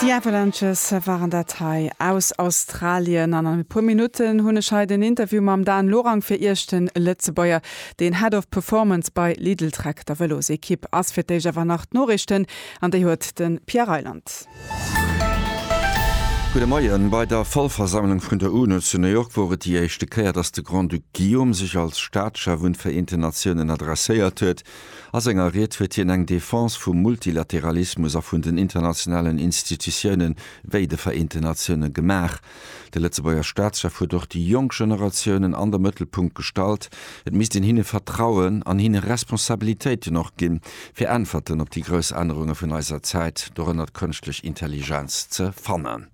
Déi Avalanches waren dat hei aus Australien an an e puer Minutten hunn ech hei den Interview mam Dan Lorang fir Iech. Den Lëtzebuerger, deen Head of Performance bei Lidl Trek, der Vëlosekipp, ass fir d'éischt awer nach d'Noriichten an déi huet de Pierre Reyland. Gudde Moien. Bei der Vollversammlung vun der UNO zu New York wor et déi éischte Kéier, datt de Grand-Duc Guillaume sech als Staatschef un d'Vereenten Natiounen adresséiert huet. A senger Ried huet hien eng Defense vum Multilateralismus a vun den internationalen Institutiounen, wéi de Vereenten Natiounen, gemaach. De Lëtzebuerger Staatschef huet och déi jonk Generatiounen an de Mëttelpunkt gestallt. Et misst een hinne vertrauen an hinne Responsabilitéiten och ginn, fir Äntwerten op déi grouss Ännerunge vun eiser Zäit, dorënner d'kënschtlech Intelligenz, ze fannen.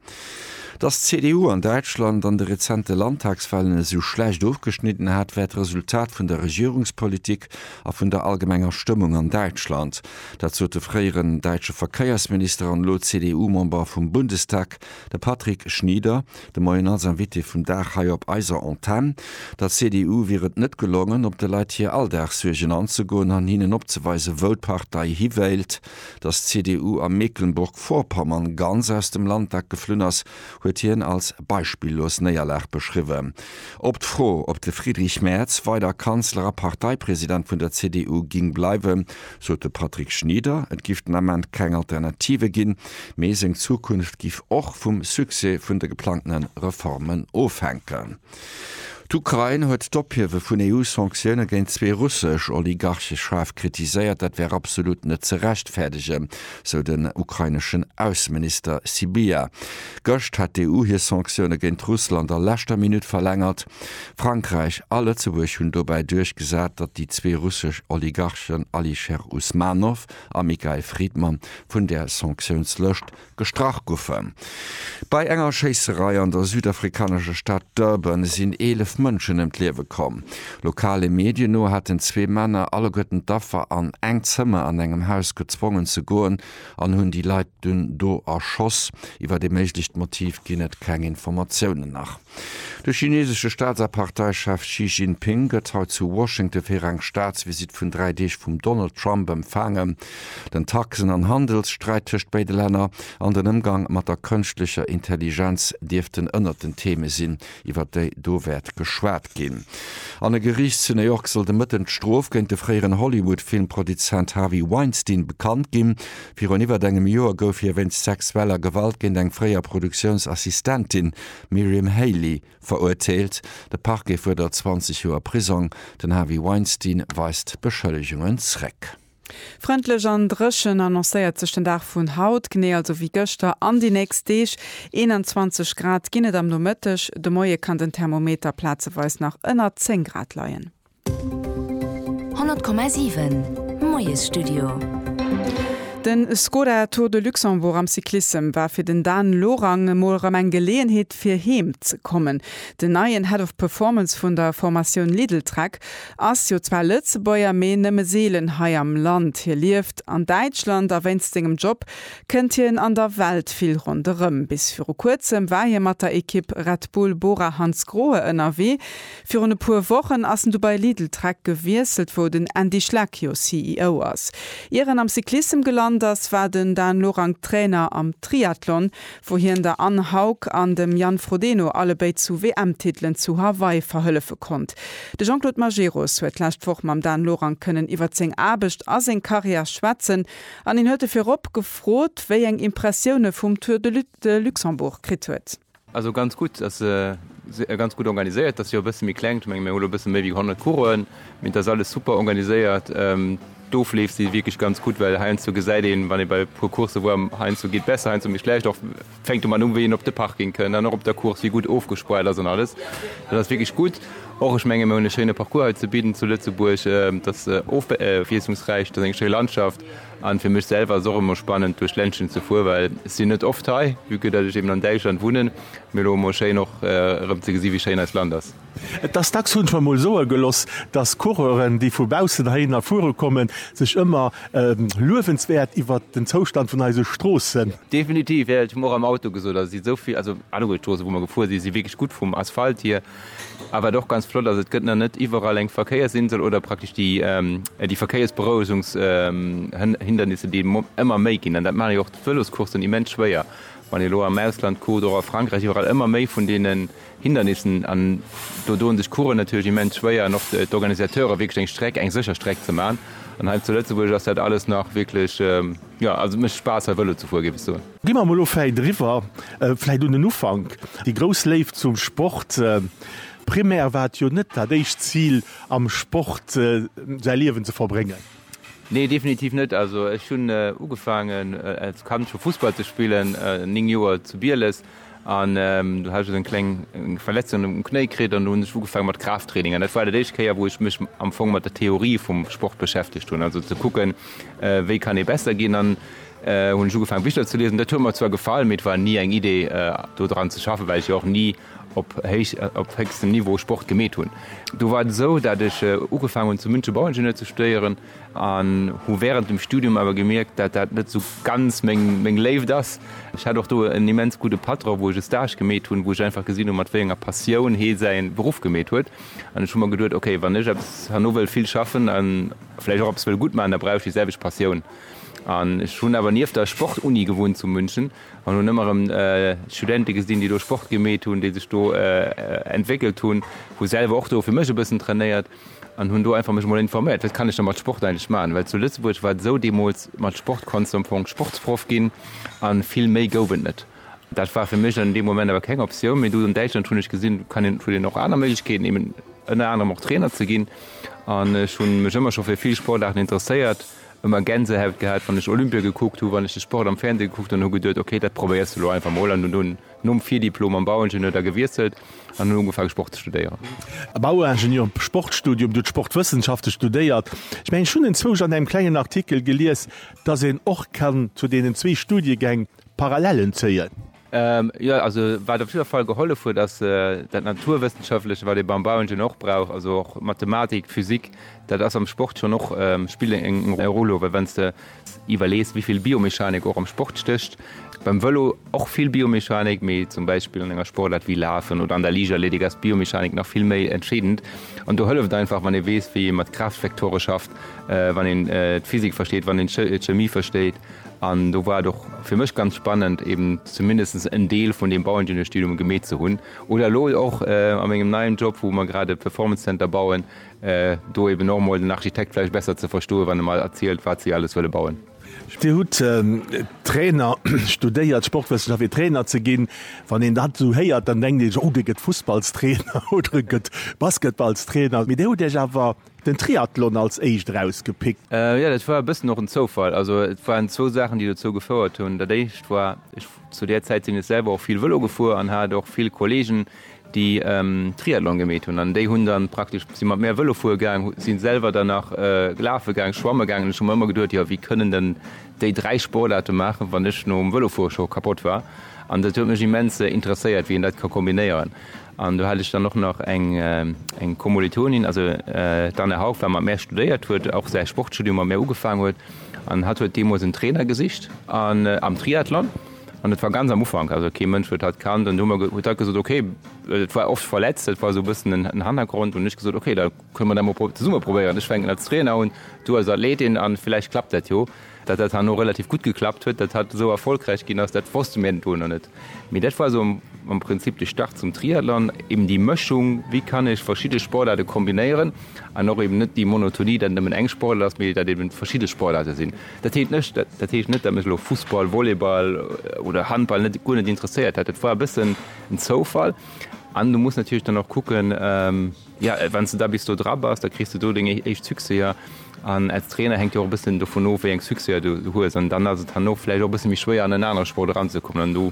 Datt d'CDU an Däitschland an de rezente Landtagswahlen esou schlecht ofgeschnidden hat, wär d'Resultat vun der Regierungspolitik, a vun der allgemenger Stëmmung an Däitschland. Dat sot de fréieren däitsche Verkéiersminister an elo CDU-Member vum Bundestag, de Patrick Schnieder, de Moien als Invité vum Dag hei op eiser Antenn. Der CDU wier et net gelongen, op de Leit hir Alldagssuergen anzegoen an hinnen opzeweisen, wou d'Partei hiwéilt. Datt d'CDU a Mecklenburg-Vorpommern ganz aus dem Landtag geflunn ass, huet hien als beispillos Néierlag beschriwwen. Op d'Fro, ob de Friedrich Merz weider Kanzler a Parteipresident vun der CDU ging bleiwen, sot de Patrick Schnieder, et giff den Ament keng Alternative ginn, mee seng Zukunft giff och vum Succès vun de geplangtene Reformen ofhänken. D'Ukrain huet d'Ophiewe vun EU-Sanktioune géint zwee russesch Oligarche schaarf kritiséiert. Dat wär absolut net ze rechtfäerdegen, sou den ukraineschen Ausseminister Sybiha. Gëscht hat d'EU hir Sanktioune géint Russland a leschter Minutt verlängert. Frankräich a Lëtzebuerg hunn dobäi duerchgesat, datt déi zwee russesch Oligarchen Alisher Usmanov a Mikhail Fridman vun där Sanktiounslëscht Gestrach goufen. Bei enger Schéisserei an der südafrikanescher Stad Durban sinn 11 Mënschen ëm d'Liewe komm. Lokale Medien no haten zwee Männer alleguerten d'Affer an eng Zëmmer an engem Haus gezwongen ze goen an hunn déi Leit dunn do erschoss. Iwwert ee méiglecht Motiv ginn et keng Informatiounen nach. De chinesesche Staats a Parteichef Xi Jinping gëtt haut zu Washington fir eng Staatsvisitt vun dräi Deeg vum Donald Trump empfaangen. Den Taxen an Handelssträit tëscht béide Länner an den Ëmgang mat der kënschtlecher Intelligenz dierften ënnert den Theme sinn, iwwer déi do wäert geschwat ginn. An e Geriicht zu New York soll de Mëtten d'Strof géint de fréieren Hollywood-Filmproduzent Harvey Weinstein bekannt ginn. Virun iwwert engem Joer gouf hie wéinst sexueller Gewalt géint eng fréier Produktiounsassistentin Miriam Haley verurteelt, de Parquet fuerdert 20 Joer Prisong, den Harvey Weinstein weist d'Beschëllegungen zréck. Frëndlech an dréchen annoncéiert sech den Dag vun haut, genee also wéi gëschter an déi nächst Deeg. 21 Grad ginn et am Nomëtteg, de Moie kann den Thermometer plazeweis nach ënner 10 Grad leien. 100,7 Moiesstudio. De Skoda Tour de Luxembourg am Cyclissem war fir den Dan Lorang emol erëm eng Geleeënheet fir heem ze kommen. Den neien Head of Performance vun der Formatioun Lidl-Trek ass jo zwar Lëtzebuerger, mee nëmme seelen hei am Land. Hie lieft an Däitschland a wéinst sengem Job kënnt hien an der Welt vill ronderëm. Bis viru kuerzem war hie mat der Ekipp Red Bull Bora Hansgrohe ënnerwee. Virun e puer Wochen ass en du bei Lidl Trek gewiesselt, wou den Andy Schleck jo CEO ass. Ier en am Cyclissem gelant ass, war den Dan Lorang Trainer am Triathlon, wou hien der Anne Haug an dem Jan Frodeno allebéid zu WM-Titelen zu Hawaii verhëllefe konnt. De Jean-Claude Majerus huet d'lescht Woch mam Dan Lorang kënnen iwwert seng Aarbecht a seng Karriär schwätzen an hien huet e virop gefrot, wéi eng Impressioune vum Tour de Luxembourg kritt huet. Also ganz gutt, ass ganz gutt organiséiert, dat ass jo e bësse méi klengt, ech menge mir hu lo e bësse méi wéi 100 Coursen, mee et ass alles super organiséiert. D'Ofleef si wierklech ganz gutt, well heiansdo gesäit een, wann ee bei e puer Coursse woar, heiansdo geet besser, heiansdo méi schlecht, och fänkt domat u wéi een op de Parking kënnt an och op der Course, wéi gutt ofgespoart ass an alles. Dat ass wierklech gutt. Och ech menge mir hunn e schéine Parcours hei ze bidden zu Lëtzebuerg, dat ass ofwiesslungsräich, dat ass eng schéi Landschaft An fir mech selwer ass och emmer spannend duerch Ländchen ze fuer well ech sin net oft hei vue que dat ech eben an Däitschland wunnen mee lo emmer schéin och erem ze gesi wéi schéin eist Land ass. Et ass dacks, hunn ech mer mol soe geloss, dass Coureuren déi vu baussen heihinner fuere kommen, sech ëmmer luewenswäert iwwert den Zoustand vun eise Stroossen. Definitiv, jo, ech hu mer och am Auto gesot, also et si souvill, also alleguer d'Stroosse wou mer gefuer si si wierklech gutt vum Asphalt hier. A wat och ganz flott ass, et gëtt nach net iwwerall eng Verkéiersinsel oder praktesch déi déi Verkéiersberouegungs Hindernisse, déi ëmmer méi ginn. An dat maachen jo och d'Vëloscoursen immens schwéier, wann ee elo am Ausland kuckt, och a Frankräich, iwwerall ëmmer méi vun deene Hindernissen. An do doen sech d'Coureuren natierlech immens schwéier an och d'Organisateure wierklech eng Streck, eng sécher Streck ze maachen. An hei zu Lëtzebuerg ass dat alles nach wierklech, jo also et mécht Spaass hei Vëlo ze fueren, géif ech soen. Gi mer mol elo vläit eriwwer, vläit un den Ufank, déi grouss Léift zum Sport. Primär war et jo net dat éischt Zil, am Sport säi Liewen ze verbréngen. Nee, definitiv net. Also ech hunn ugefaangen als Kand scho Fussball ze spillen, 9 Joer, zu Bieles. An do hat ech esou eng kleng Verletzung um Knéi kritt an do hunn ech ugefaange mat Kraafttraining. An dat war dat éischt Kéier, wou ech mech am Fong mat der Theorie vum Sport beschäftegt hunn, also ze kucken, wéi kann ee besser ginn. Dann hunn ech ugefaange Bicher ze liesen. Dat huet mer zwar gefall, mee et war ni eng Idee, do dran ze schaffen, well ech jo och ni op héich, op héchstem Niveau Sport gemeet hunn. Do war et esou, dat ech ugefaangen hunn, zum München Bauingenieur ze studéieren. an hu während dem Studium awer gemierkt, dat dat net sou ganz meng meng Léift ass. Ech hat och do en immens gudde Patron, wou ech e Stage gemeet hunn, wou ech einfach gesinn hunn, mat wéi enger Passioun hee säi Beruff gemeet huet. An ech hu mer geduet, okay, wann ech eppes herno wëll vill schaffen a vläicht och eppes wëll gutt maachen, da brauch ech déi selwecht Passioun. An ech hunn awer nieft der Sportuni gewunnt zu München an hunn ëmmer erëm Studente gesinn, déi do Sport gemeet hunn, déi sech do entwéckelt hunn, hu selwer och do fir mech e bëssen trainéiert. An hunn do einfach mech emol informéiert, wat kann ech da mat Sport eigentlech maachen, well zu Lëtzebuerg war et esou, deemools mat Sport konntst du am Fong Sportsproff ginn a vill méi gouf et net. Dat war fir mech an deem Moment awer keng Optioun, mee do an Däitschland hunn ech gesinn, kann een, huet een och aner Méiglechkeeten, eben ënner anerem och Trainer ze ginn an ech hu mech ëmmer scho fir vill Sportaarten interesséiert, ëmmer Gänsehäut gehat, wann ech Olympia gekuckt hu, wann ech de Sport am Fernseh gekuckt hunn, hu geduet, okay, dat probéiers de elo einfach mol an hunn dunn. Nom Virdiplom am Bauingenieur da gewiesselt an hunn ugefaangen Sport ze studéieren. Bauingenieur am Sportstudium, du d'Sportwëssenschafte studéiert. Ech mengen ech hunn enzwousch an engem klengen Artikel gelies, dass een och kann zu deenen zwee Studiegäng Parallellen zéien. Jo, also wat op jidder Fall gehollef huet ass dat Naturwëssenschaftleche wat ee beim Bauingenieur och brauch, also och Mathematik, Physik, dat ass am Sport schonn och, spillt eng Roll, well wann s de Iwwerlees wéi vill Biomechanik och am Sport stécht. Beim Vëlo och vill Biomechanik, mee zum Beispill an enger Sportaart wéi Lafen oder an der Liichtathletik ass d'Biomechanik nach vill méi entscheedend. An do hëlleft einfach wann ee weess wéi ee mat Kraaftvektore schafft, wann een d'Physik versteet, wann een d'Chemie versteet. An do war et och fir mech ganz spannend eben zumindest en Deel vun deem Bauingenieurstudium gemeet ze hunn oder elo och a mengem neien Job wou mer grad e Performance Center bauen, Do eben och emol den Architekt vläicht besser ze verstoen, wann e mer erzielt, wat si alles wëlle bauen. Dir hutt Trainer studéiert, Sportwëssenschaft, fir Trainer ze ginn. Wann een dat esou héiert, dann denkt ee sech, oh, dee gëtt Fussballstrainer oder e gëtt Basketballstrainer. Mee Dir hutt Iech awer den Triathlon als éischt erausgepickt. Jo, dat war e bëssen och en Zoufall. Also et waren zwou Saachen, déi dozou gefouert hunn. Dat éischt war, ech, zu där Zäit sinn ech selwer och vill Vëlo gefuer an hat och vill Kolleegen, déi Triathlon gemeet hunn an déi hunn da praktesch, si mat mär Vëlo fuere gaang, si selwer dann nach lafe gaang, schwamme gaang an ech hu mer ëmmer geduet, jo wéi kënnen dann déi dräi Sportaarte maachen, wann ech nom Vëlofuere scho kapott war an dat huet mech immens interesséiert, wéi een dat ka kombinéieren an do hat ech dann och nach eng eng Kommolitonin, also d'Anne Haug war mat mär studéiert huet, och säi Sportstudium mat mär ugefaangen huet an hatt huet deemools en Trainer gesicht am Triathlon. An et war ganz am Ufank, also kee Mënsch huet dat kannt. An do hu mer, huet hatt gesot, okay, well et war oft verletzt, dat war esou e bëssen en, en Hannergrond. Hunn ech gesot, okay, da kënne mer dat mol pro, zesumme probéieren. Ech fänken als Trainer un, du als Athletin an vläicht klappt dat jo. Datt dat herno relativ gutt geklappt huet, datt hatt esou erfolgräich ginn ass, dat wosste mir do nach net. Mee dat war esou am, am Prinzip de Start zum Triathlon, eben déi Mëschung, wéi kann ech verschidde Sportaarte kombinéieren an och eben net déi Monotonie, datt et nëmmen eng Sportaart ass, mee datt eben verschidde Sportaarte sinn. Dat heescht net, dat heescht net, datt mech elo Fussball, Volleyball oder Handball net, guer net interesséiert hätt. Dat war e bëssen en Zoufall. An du muss natierlech dann och kucken, jo, wann s de da bis do dra bass, da kriss de do deng éischt Succèser. An als Trainer hänkt jo och e bëssen dovun of, wéi eng Succèser du hues. An dann ass et herno vläicht och e bësse méi schwéier, an en anere Sport eranzekommen. An do,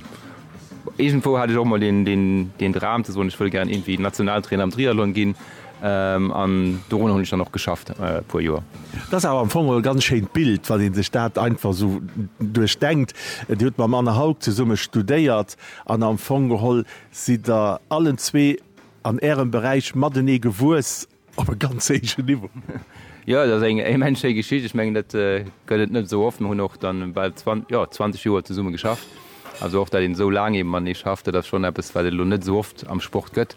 iergendwou hat ech och emol deen, deen Dram ze soen, ech wëll gären iergendwéi Nationaltrainer am Triathlon ginn. An dorunner hunn ech dann och geschafft e puer Joer. Dat ass awer am Fong e ganz schéint Bild, wann ee sech dat einfach esou duerchdenkt. Dir hutt mam Anne Haug zesumme studéiert an am Fong geholl sidd Der allen zwee an Ärem Beräich matenee gewuess op e ganz héijen Niveau. Jo, dat ass eng immens schéi Geschicht. Ech mengen, dat gëtt et net esou oft. Mir hunn och dann bal 20 Joer zesumme geschafft. Also och dat een esou laang eben matenee schafft, dat ass schonn eppes, wat et elo net esou oft am Sport gëtt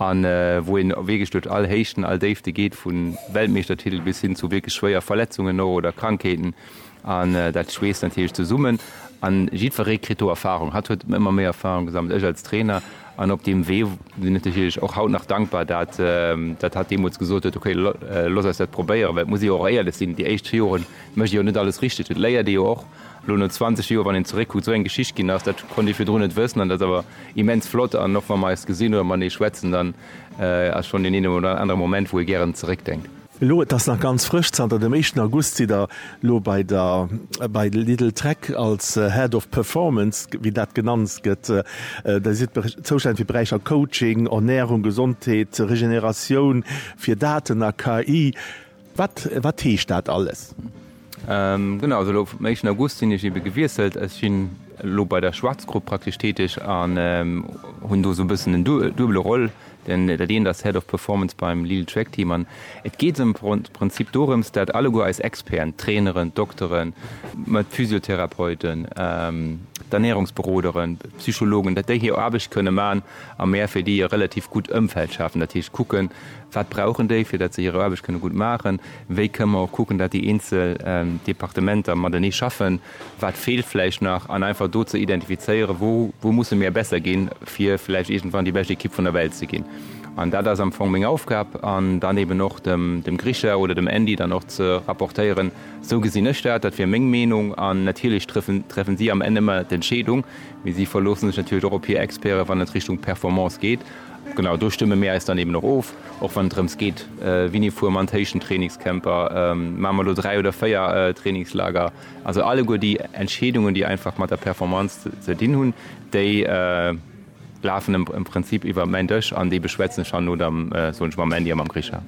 an wou een wierklech duerch all Héichten, all Déifte geet, vu Weltmeeschtertitel bis hin zu wierklech schwéier Verletzungen och oder Krankheeten an dat schweesst natierlech zesummen an jiddweree kritt do Erfarung. Hatt huet ëmmer méi Erfarung gesammelt, ech als Trainer an op deem Wee sinn ech natierlech och haut nach dankbar, dat dat hatt deemools gesot huet, okay looss eis dat probéieren, well et muss ee jo och éierlech sinn, déi éischt Joren mécht ee jo net alles richteg, et léiert ee jo och. Elo no 20 Joer, wann een zeréckkuckt, esou eng Geschicht ginn ass, dat konnt ee virdrun net wëssen an dat ass awer immens flott. An och wa mer eis gesinn oder matenee schwätzen, dann ass schonn deen eenen oder anere Moment, wou ee gären zeréckdenkt. Elo, et ass nach ganz frësch, zanter dem éischten August sidd Der elo bei der bei Lidl Tech als Head of Performance, wéi dat genannt gëtt. Der sidd zoustänneg fir d'Beräicher Coaching, Ernärung, Gesondheet, Regeneratioun, fir Daten a KI. Wat wat heescht dat alles? Genau, also elo am éischten August sinn ech ebe gewiesselt. Ech sinn elo bei der Schwarzgrupp praktesch täteg an hunn do esou e bëssen en duebele Rôle. Den dat eent ass Head of Performance beim Lille Trek Team an et geet am Prinzip dorëms, dat alleguer eis Experten, Traineren, Dokteren, mä d'Physiotherapeuten, d'Ernährungsberoderen, d'Psychologen, dat déi hir Aarbecht kënne man a mär fir déi e relativ gutt Ëmfeld schafen. Dat heescht kucken, Wat brauchen déi, fir datt se hir Aarbecht kënne gutt maachen? Wéi kënne mer och kucken, datt déi eenzel Departementer matenee schaffen? Wat feelt vläicht nach? An einfach do ze identifizéieren, wou, wou musse mir besser ginn, fir vläicht iergendwann déi bescht Ekipp vun der Welt ze ginn. An dat ass am Fong meng Aufgab. An dann eben och dem, dem Grisha oder dem Andy dann och ze rapportéieren, Esou gesinn ech dat, dat wier meng Meenung. An natierlech trëffen, treffen si am Enn ëmmer d'Entscheedung, mee si verloosse sech natierlech och op hir Experten, wann et Richtung Performance geet. Genau do stëmme mir äis dann eben och of, och wann et drëms geet, wini fuer mer an d'Héichten, Trainingscamper, maache mer elo dräi oder véier Trainingslager, also alleguer déi Entscheedungen, déi einfach mat der Performance ze dinn hunn, déi lafen am Prinzip iwwer mäin Dësch an déi beschwätzen ech herno da, soen ech mam Andy a mam Grisha.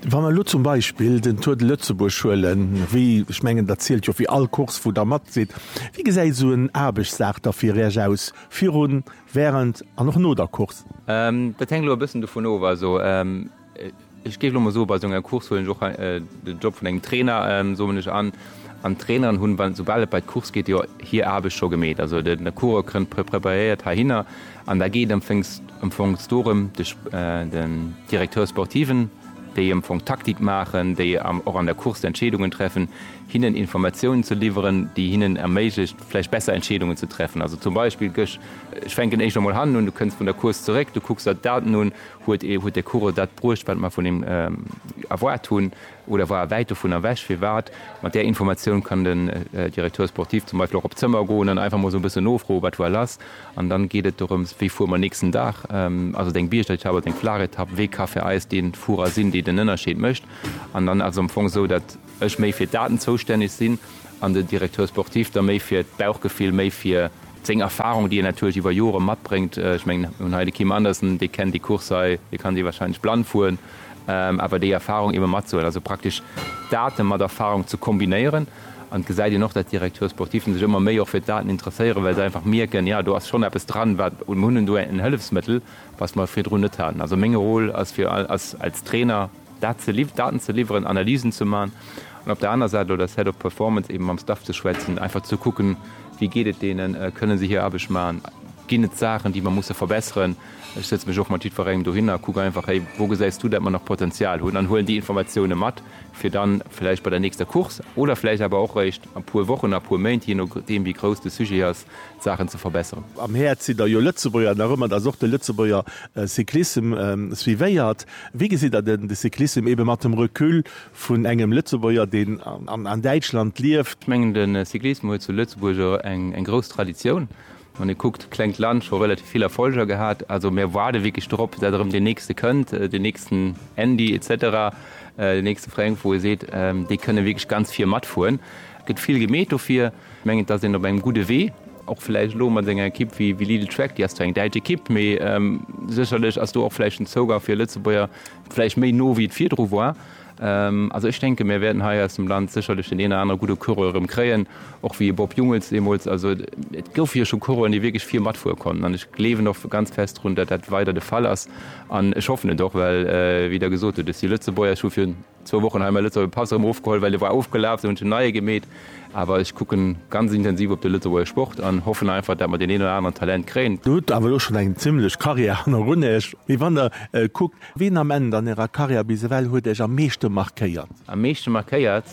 Wa mer elo zum Beispill den Tour de Lëtzebuerg huelen, wéi, ech mengen, dat zielt jo fir all Course, wou Der mat sidd, wéi gesäit esou en Aarbechtsdag da fir Iech aus, virun, Wärend an och no der Course. Dat hänkt elo e bëssen dovun of, also ech géif elo emol soe bei esou enger Course huelen ech och de Job vun engem Trainer, soen ech, an. An d'Traineren hunn, wann, soubal et bei d'Course geet, jo hir Aarbecht scho gemeet. Also de Coureur kënnt preparéiert heihinner an da geet am Fong dorëm, de Directeur sportiven, déi am Fong d'Taktik maachen, déi och an der Course d'Entscheedungen treffen, hinnen Informatiounen ze liwweren, déi hinnen erméiglecht, vläicht besser Entscheedungen ze treffen. Also zum Beispill gësch, ech fänken éischter mol hannen un, du kënns vun der Course zeréck, du kucks der d'Daten un, huet ee, huet de Coureur dat bruecht, wat mer vun him erwaart hunn oder war e wäit dovunner ewech? Firwat? Mat där Informatioun kann den Directeur sportif zum Beispill och op d'Zëmmer goen an einfach mol sou e bëssen nofroen, wat war lass? An dann geet et dorëms, wéi fuere mer nächsten Dag? Ass et eng Biergetapp, ass et eng Flachetapp? Wee ka fir eis dee Fuerer sinn, dee den Ënnerscheed mécht? An dann ass et am Fong esou, datt. ech méi fir d'Daten zoustänneg sinn an den Directeur sportif da méi fir d'Bauchgefill, méi fir seng Erfahrung, déi en natierlech iwwer Jore matbréngt. Ech mengen, mir hunn hei de Kim Anderson, dee kennt déi Course hei, dee kann déi wahrscheinlech blann fueren, awer déi Erfahrung ebe matzehuelen, also praktesch Date mat Erfahrung ze kombinéieren. An et gesäit een och, datt d'Directeurs sportifen sech ëmmer méi och fir d'Daten interesséieren, well se einfach mierken, jo, do ass schonn eppes dran, wat, mir hunn do en Hëllefsmëttel, wat mer virdrun net haten. Also meng Rôle ass fir, ass als Trainer, Dat ze liww-, Daten ze liwweren, Analysen ze man an op der aner Säit elo dess Head of Performance eben mam Staff ze schwätzen, einfach ze kucken, wéi geet et deenen, kënne se hir Aarbecht man, ginn et Saachen, déi mer musse verbesseren. Ech sëtze mech och mat jiddwerengem dohinner a kucken einfach, Hey, wou gesäis du, dat mer nach Potenzial hunn? an huelen déi Informatiounen mat, fir dann vläicht bei der nächster Course oder vläicht awer och réischt a puer Wochen, a puer Méint, jee nodeem, wéi grouss de Sujet ass, Saachen ze verbesseren. Am Häerz sidd der jo Lëtzebuerger nach ëmmer, dat ass och de Lëtzebuerger Cyclissem suivéiert. Wéi gesitt der den de Cyclissem ebe mat dem Recul vun engem Lëtzebuerger, deen an Däitschland lieft? Ech mengen de Cyclissem huet zu Lëtzebuerg och eng eng grouss Traditioun. Wann ee kuckt, klengt Land, scho relativ vill Erfolger gehat. Also mir waarde wierklech drop, dat erëm deen nächste kënnt, deen nächsten Andy etc. Deen nächste Fränk, wou ee seet, déi kënne wierklech ganz vir matfueren. Gëtt vill gemeet dofir. Ech mengen, et ass een op engem gudde Wee, och vläicht elo mat senger Ekipp wéi Lidl Trek, déi ass zwar eng däitsch Ekipp, mee sécherlech ass do och vläicht den Zougang fir Lëtzebuerger vläicht méi no wéi et virdru war. Also ech denke mir wäerten hei aus dem Land sécherlech deen een oder anere gudde Coureur erëm kréien, och wéi e Bob Jungels deemools. Also et goufe jo scho Coureuren, déi wierklech vir matfuere konnten an ech gleewen och ganz fest drun, datt dat weider de Fall ass an ech hoffen et och, well wéi Der gesot hutt, et si Lëtzebuerger, ech hu virun Zwou Wochen hu mir Lëtzebuerger Pass erëm ofgeholl, well e war ofgelaf, esou hunn ech en neie gemeet. Awer ech kucken ganz intensiv op de Lëtzebuerger Sport an hoffen einfach, dat mer deen een oder aneren Talent kréien. Der hutt awer elo schonn eng zimmlech Karriär hannerun Iech. Mee wann Der kuckt, wien am Enn an Ärer Karriär bis ewell huet Iech am meeschte markéiert? Am meeschte markéiert?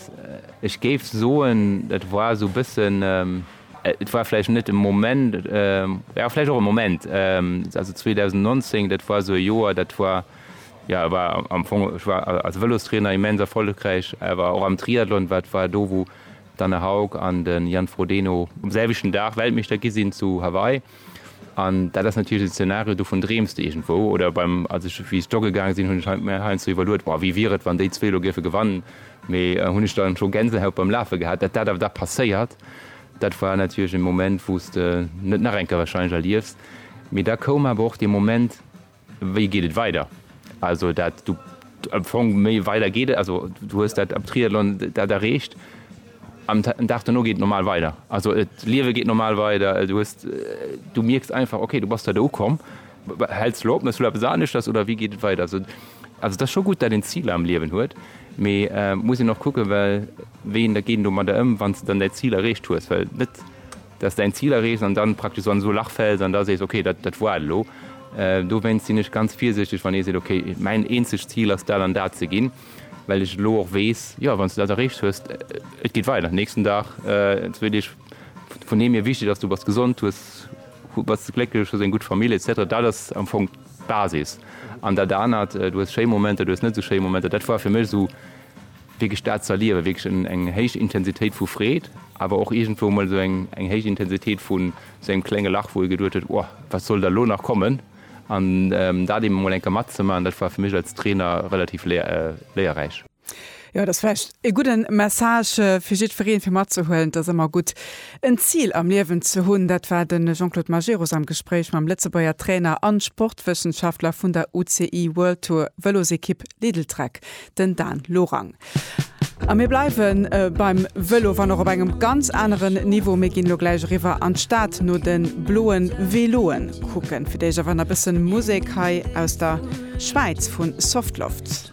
Ech géif soen, dat war esou e bëssen, et war vläicht net e Moment, jo vläicht och e Moment, also 2019, dat war esou e Joer, dat war Jo, war am Fong, ech war als Vëlostrainer immens erfollegräich, awer och am Triathlon, wat war do wou d'Anne Haug an de Jan Frodeno um selwechten Dag Weltmeeschter gi sinn zu Hawaii an dat ass natierlech en Zenario, dovun dreems de iergendwou oder beim, als ech, wéi ech jogge gaang sinn, hunn ech mir heiansdo iwwerluet, boah, wéi wier et wann déi zwee elo géife gewannen, mee hunn ech dann scho Gänsehaut beim Lafe gehat, datt dat awer da passéiert, dat war natierlech e Moment wou s de net nach eng Kéier warscheinlech erliefs, mee da koum awer och dee Moment. Wéi geet et weider? Also dat du am Fong méi weider geet et, also du hues dat am Triathlon dat erreecht, am den Dag duerno geet et normal weider. Also d'Liewe geet normal weider, du hues, du mierks einfach, okay, du bass do ukomm. Häls du lo op, méchs du lo eppes aneschters oder wéi geet et weider? Also et ass scho gutt, dat een Ziler am Liewen huet, mee muss een och kucken, well wéi een da geet een domadder ëm, wann s de dann däi Zil erreecht hues? Well net. dass däin Zil erreecht an dann praktesch esou an esou e Lach fälls an da sees, ok, dat dat woar et elo. Dowéinst sinn ech ganz virsichteg wann ee seet, ok, mäin eenzegt Zil ass dat an dat ze ginn, well ech elo och weess, jo, wann s de dat erreecht hues, et geet weider, nächsten Dag, zwee Deeg, vun deem hir wichteg ass, du bass gesond, hues bass glécklech, hues eng gutt Famill, etc. Dat ass am Fong d'Basis an dat anert, du hues schéi Momenter, du hues net esou schéi Momenter, dat woar fir mech esou. wierklech dat ze erliewen, wierklech en, eng héich Intensitéit vu Freed, awer och iergendwou emol esou eng, eng héich Intensitéit vu sou engem klenge Lach, wou ee geduecht huet, Ohh, wat soll da elo nach kommen? An dat eben emol eng Kéier matzemaachen, dat war fir mech als Trainer relativ léier, léierräich. Jo, et ass vläicht e gudde Message fir jiddwereen, fir matzehuelen, et ass ëmmer gutt, en Zil am Liewen ze hunn. Dat war de Jean-Claude Majerus am Gespréich mam Lëtzebuerger Trainer a Sportwëssenschaftler vun der UCI World Tour Vëlosekipp Lidl-Trek. den Dan Lorang. A mir bleiwe beim Vëlo, wann och op engem ganz aneren Niveau. Mir ginn elo gläich eriwwer an d'Stad no de bloe Veloe kucken. Fir d'éischt awer nach e bësse Musek hei aus der Schwäiz vu Softloft.